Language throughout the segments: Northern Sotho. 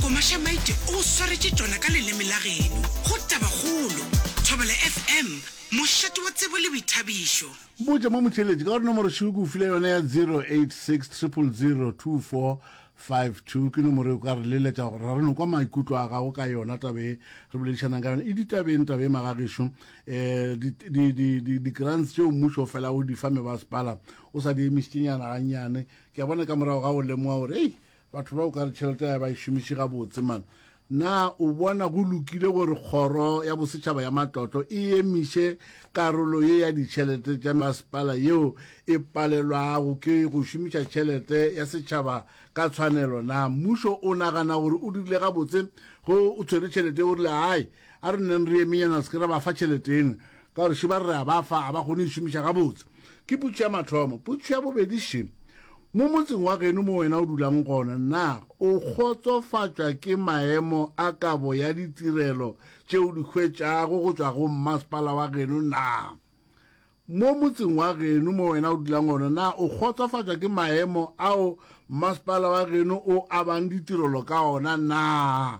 Komaša maite o swaretše tšona ka leleme la geno. Go Tabakgolo, Thobela FM, mošate wa tsebo le boithabišo. Botša mo motheeletši ka gore nomoro šoo ke go file yona ya 0860002452 ke nomoro e o ka re leletša gore ra re no kwa maikutlo a gago ka yona taba e re boledišanang ka yona e ditabeng taba e magagešo um di-grants tšeo mmušo o fela o di fa mebasepala o sa di emišitše nyana gannyane ke a bona ka morago ga go lemoga gore ei Batho ba o ka re tšhelete ya ba e šomiše gabotse man. Na o bona go lokile gore kgoro ya bosetšhaba ya matlotlo e emiše karolo ye ya ditšhelete tša masepala yeo e palelwago ke go šomiša tšhelete ya setšhaba ka tshwanelo? Na mmušo o nagana gore o dirile gabotse ge o tshwere tšhelete o rile, Ai, a re nneng re emenyana se ke ra ba fa tšhelete eno? Ka gore še ba re re a ba fa, ga ba kgone go e šomiša gabotse. Ke putsu ya mathomo. Putsu ya bobedi, še mo motseng wa geno mo wena o dulang gona, na o kgotsofatšwa ke maemo a kabo ya ditirelo tše o di hwetšago go tšwa go mmasepala wa geno? Na mo motseng wa geno mo wena o dulang gona, na o kgotsofatšwa ke maemo ao mmasepala wa geno o abang ditirelo ka ona? Na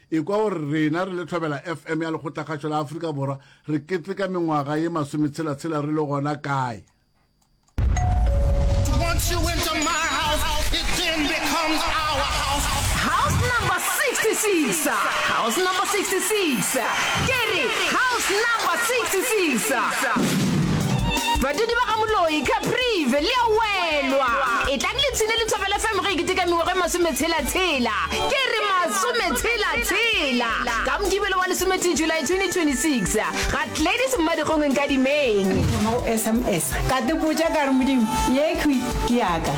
Ekwa gore rena re le Thobela FM ya Lekgotlakgašo la Afrika Borwa re keteka mengwaga ye masometshela-tshela re le gona kae. House number 66 House number 66 Ke re house number 66 Badudi ba ga Moloi, Caprive le a welwa. Etlang le tshine le Thobela FM ge e ketekamiwa ge masometshela-tshela. Ke re masometshela-tshela ka Mokibelo wa lesometee July 2026 ga Gladys Mmadikgongwe Nkadimeng. Ke thoma go sms ka tepotša ka re Modimo yekhwi ke yaka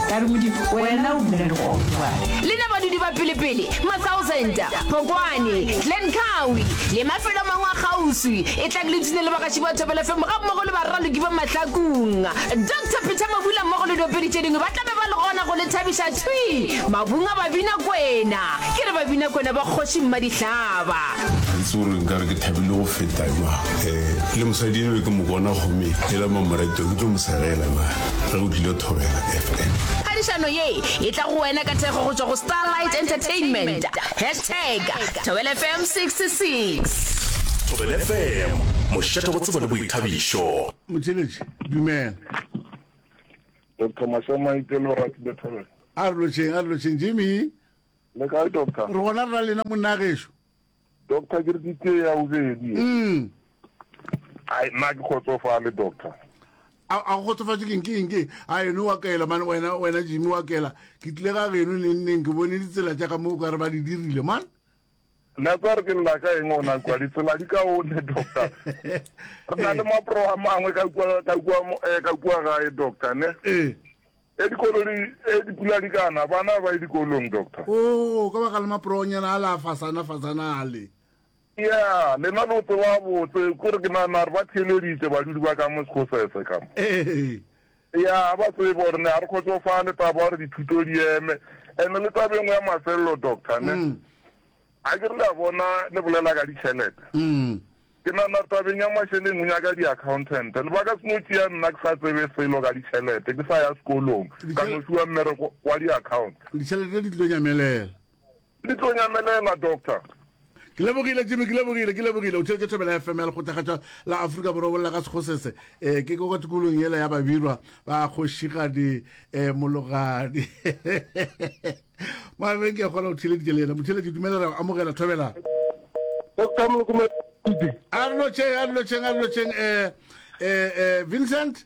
ka re Modimo wena o bile le gone jwale. Le na badudi ba pelepele, Mathousand, Phokwane, Glencoe le mafelo a mangwe a kgauswi e tlang le tune le bagaši ba Thobela FM ga mmogo le baraloki ba Mahlakong. Doctor Peter Mabula mmogo le diopedi tše dingwe ba tla be ba le gona go le thabiša thwi. Mabunga Babinakwena, ke re Babinakwena ba Kgoši Mmadihlaba. Ga itse gore nka re ke thabile go feta jwang. Eh, le mosadi enwe ke mo bona gomme e la mamoreto ke tlo mo segela na ge o tlile thobela FM. Phadišano ye e tla go wena ka thekgo go tšwa go Starlight Entertainment. Hashtag Thobela FM 66. Thobela FM, mošate go tsebo le boithabišo. Motšheletše, dumela. Doctor Mahlo Maite le Oratile Thobela. A re lotšheng, a re lotšheng, Jimmy. Le kae Doctor? Re gona rra lena monna gešo. Doctor ke re ke tee ya bobedi. Mm. Ai nna ke kgotsofale Doctor. A a kgotsofatše keng ke eng ke a eno wa kaela man wena wena Jimmy wa kaela ke tlile ga geno neng neng ke bone ditsela tša ka mo o ka re ba di dirile man. Nako a re ke lela ka eng ona kwa ditsela di ka one doctor re na le mapro a mangwe ka kua ka kua eh, ka kua gae doctor ne ee e dikolo di e dipula di kana bana ba e dikolong doctor o oh, ka baka le maporonyana a la fasana fasana ale ya lena lo tseba botse kore ke nana re ba theleditse badudi ba ka mo sekgosese kamo ee Eya, ga ba tsebe gore ne ga re kgotsofale taba gore dithuto di eme. And le taba e nngwe ya mafelelo, doctor, ne? A ke re le a bona le bolela ka ditšhelete. Ke nagana tabeng ya mašeleng o nyaka di-accountant. Lebaka se no tšea nna ke sa tsebe selo ka ditšhelete, ke sa ya sekolong, ka no fiwa mmereko wa di-account. Ditšhelete di tlo nyamelela. Ke tlo nyamelela, Doctor. Ke lebogile, Jimmy, ke lebogile, ke lebogile. O theetše thobela ya FM ya lekgothagatša la Afrika Borwa bolla ka sekgosese. Eh, ke kwa tikolong yela ya babirwa ba kgošigadi eh, mologadi. Maabeng ke a kgona go theleditše le yena. Motheletše, dumelela amogela thobela. Doctor Molokomedi. A re lotšheng, a re lotšheng, a re lotšheng. Eh, eh, eh, Vincent?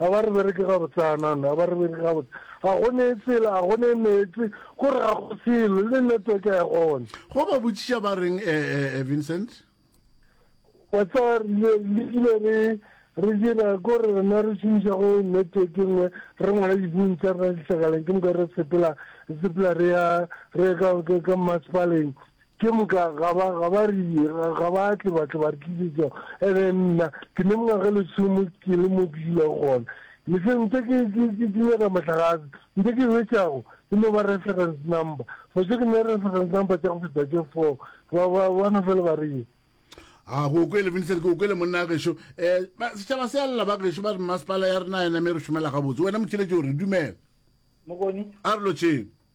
A ba re bereke gabotsana, no, a ba re bereke gabotse. Ga go ne tsela, ga go ne meetse, go re ga go selo, le network ga e gone. Go ba botšiša ba reng, eh, eh, eh, Vincent? Wa tseba, re ile, re ile re, re dira ko re rena re šomiša go network e nngwe, re ngwala dibuung tsa rena dihlakaleng, ke moka re sepela, re sepela re ya, re ya ka, ka, ka mmasepaleng, Ke moka ga ba, ga ba re, ga, ga ba tle ba tle ba re tlisetša, ebe nna, ke ne mengwaga lesome ke le mo ke dulago gona. Le se ntse ke, ke, ke, ke nyaka mohlagase, ntse ke hwetšago e no ba reference number. For sure ke ne reference number tša go feta tše four, ba, ba, ba no fela ba re ye. A ke o kwele, Vincent, ke o kwele monna gešo. Eh, ba, setšhaba se a lla ba gešo, ba re mmasepala ya rena a e name re šomela gabotse. Wena Motšheletšo o re, dumela. Mokoni. A re lotšheng.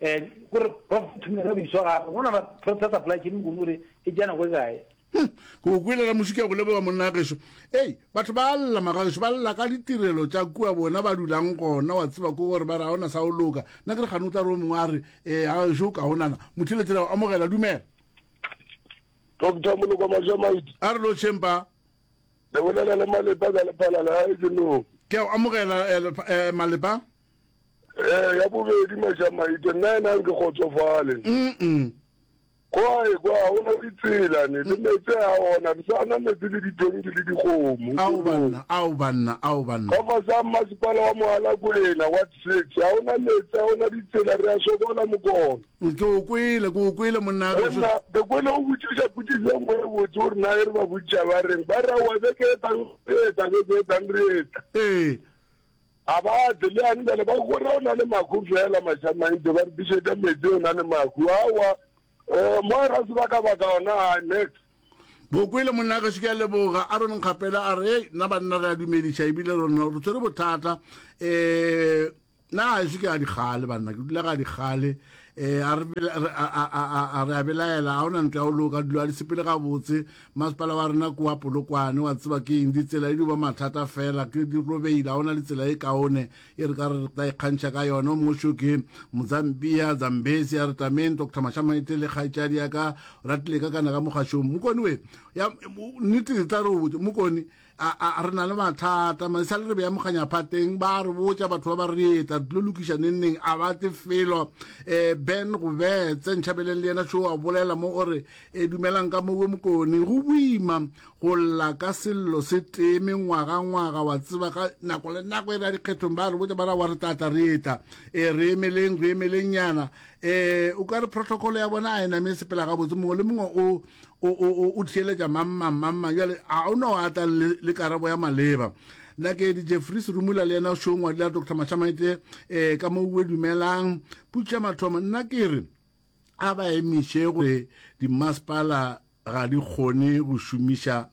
Eh, gore prof thumela biso ga go na prof sa supply chain go gore e jana go gae hmm, go kwela la musika go leboga monna gešo ei batho ba lla magaešo ba lla ka ditirelo tša kua bona ba dulang gona wa tseba ko gore ba re ga ona sa o loka nna ke re gane o tla re o mongwe a re um gaešo o ka gonana motheletšela o amogela dumela doctor moloko majamaiti a re lo champa le bolela le malepa ka lephalala ga e ke no ke o amogela eh, eh, malepa Eh, ya bobedi Mashamaite, nna ena nke kgotsofale. Mm-mm. Kwae kwa ha ona ditsela ne le metse a ona re sa na metse le ditonki le dikgomo. Ao banna, ao banna, ao banna. Ka fasa masipala wa mohala kwena wa six ha ona metse a ona ditsela re a sokola mokona. Ke o kwele, ke o kwele monna re. Monna ke kwele o botšiša putiso ngwe e botse gore na e re ba botšiša ba reng ba ra wa beke e tang e tang e tang re etla. Ee. A ba tle, le yane bjale, ba go re o na le mahu feela, Mašamantšhe, ba re tliše ka meetse, o na le mahu. Aowa, um mo ra se ba ka baka ona, a next. Bo kwele monna ka šike a leboga a re nkgapela a re hey nna banna re a dumediša ebile re nna re tsere bothata eh na a šike a dikgale banna ke dula ga dikgale eh a re a re a belaela a ona ntle a o loka dilo a di sepele ga botse Masepala wa rena ke wa Polokwane, wa tseba ke eng, ditsela e dio ba mathata fela, ke di robehile, ga ona le tsela e kaone e re ka re tla ikgantšha ka yona. O mongwe xo ke Mozambiya, Zambezi, a re tameng Doctor Mashamaete le kgaetšadi ya ka Ratileka kana ka mogašong. Mokoni we, ya, nnete e tla re o botše, Mokoni, re na le mathata maisa le re beya mokganyaphateng ba re botsa batho ba ba re etla tlo lokiša nengneng a ba tle felo um eh, ben go betse ntšhabeleng le yena seo a bolela mo o re e dumelang ka mowe mokone go boima go lla ka sello se tee mengwagangwaga wa tseba ka nako le nako e re ya dikgethong ba re botsa ba ra wa re tlatla re etla e re emeleng re emeleng nyana um o ka re protocol ya bona a e name sepela gabotse mongwe le mongwe o o o o o theeletša mang mang mang mang jale a o no a tla le le karabo ya maleba nna ke di jeffries rumula le yena shongwa le dr mashamaite eh ka mo bue dumelang putša mathomo nna ke re a ba emiše gore dimasepala ga di kgone go šomiša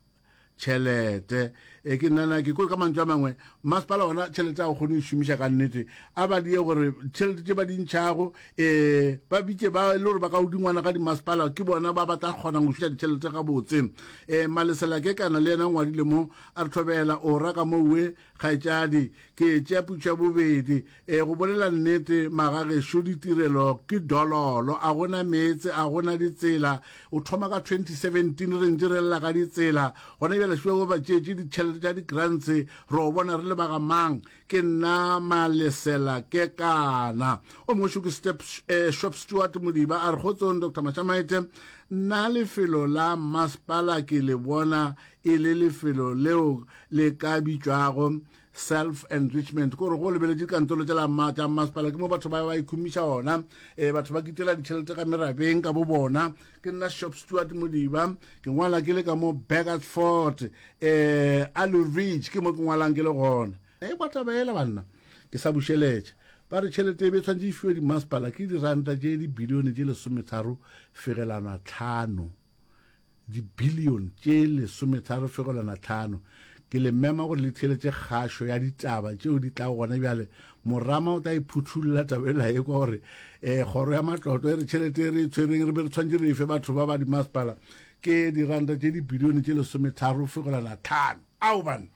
tšhelete e ke nnana ke kwe ka mantšu a mangwe masepala ona tšhelete a go kgone go šomiša ka nnete a ba die gore tšhelete tše ba di ntšhago um eh, ba bitše ba le gore ba ka godingwana ga dimasepala ke bona ba ba tla kgonang go šuša ditšhelete gabotse um eh, malesela ke kana le yena ngwadile mo a re thobela o ra ka mowe Kgaetšadi, ke etšea putšo ya bobedi. E, go bolela nnete, magagešo ditirelo ke dololo, a go na meetse, a go na ditsela. O thoma ka 2017 re ntše re lela ka ditsela. Gona bjale šuwa bo ba tšeetše ditšhelete tša di-grants, re o bona re le ba ga mang? Ke nna Malesela Kekana. O mongwe šo ke Step, e, Shop Stewart Modiba, a re, Kgotsong, Doctor Mashamaite. Nna lefelo la mmasepala ke le bona e le lefelo leo le ka bitšwago self enrichment kore go lebeletše dikantolo tša masepala ke mo batho ba ba ikhumiša ona e batho ba kitela ditšhelete ka merabeng ka bo bona ke nna shop stewart modiba ke ngwala ke le ka mo bagatford um eh, allu ridge ke mo ke ngwalang ke le gona e eh, bataba ela banna ke sa bušeletša ba re tšhelete e be tshwanetse e fiwe dimasepala ke diranta tše dibilione tše lesometharo fegelana tlhano dibilione tše lesometharo fegelwana tlhano. Ke le mema gore le theeletše kgašo ya ditaba tšeo di tlago gona bjale. Morama o tla e phuthulla taba ela ye kwa gore, E, Kgoro ya Matlotlo e re tšhelete e re e tshwereng re be re tshwanetše re efe batho ba ba dimasepala ke diranta tše dibilione tše lesometharo fegelwana tlhano. Ao banna!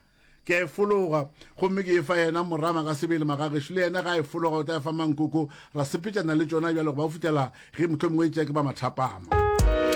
Ke a e fologa, gomme ke e fa yena Morama ka sebele. Magagešo le yena ge a e fologa o tla e fa Mankoko. Ra sepetšana le tšona bjale go ba go fihlela ge mohlomongwe e tšea ke ba mathapama.